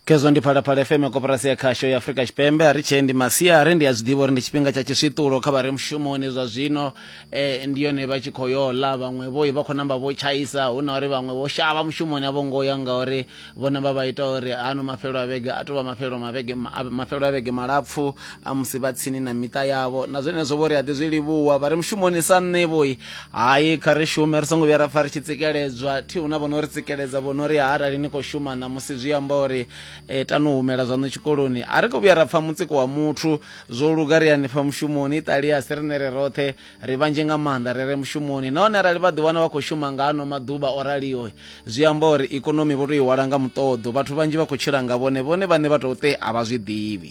kezwo ndi phalaphala fm koporasi ya khasho ya afurika tshipembe a ri tshee ndi masiari ndi a zwi ḓivha uri ndi tshifhinga tsha tshiswiṱulo kha vha re mushumoni zwa zwino eh, ndi yone vha tshi khou yo ḽa vhaṅwe vho vha khou namba vho tshaisa hu na uri vhaṅwe vho shavha mushumoni a vho ngo ya ngauri vhone vha vha ita uri ano mafhelo a vhege a tou vha mafhelo mavhege ma- a- mafhelo a vhege malapfu a musi vha tsini na miṱa yavho na zwenezwo vho ri a ḓi zwi livhuwa vha ri mushumoni sa nṋe vhoi hayi kha ri shume ri songo vhuya ra pfa ri tshi tsikeledzwa thi hu na vho no ri tsikeledza vho no ri arali ni khou shuma ṋamusi zwi amba uri e, tani u humela zwaṋu tshikoloni a ri khou vhuya ra pfa mutsiko wa muthu zwo luga ri hanefha mushumoni iṱali a si riṋe ri roṱhe ri vhanzhi nga maanḓa ri re mushumoni nahone arali vha ḓiwana vha khou shuma nga ano maḓuvha o raliho zwi amba uri ikonomi vho tou i hwala nga muṱoḓo vhathu vhanzhi vha khou tshila nga vhone vhone vhane vha tou te a vha zwi ḓivhi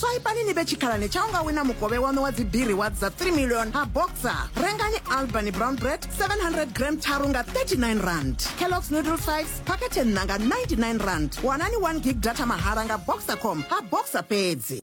swaipani ni vhe tshikhalani tsha u nga wina mukovhe waṋu wa dzibiri wa dza 3 million ha boxer rengani albany brown bread 700 gram tharu nga 39 rand kellogs noodle 5 phakhethe nṋa nga 99 rand wanani 1 gig data mahala nga boxer com ha boxer fhedzi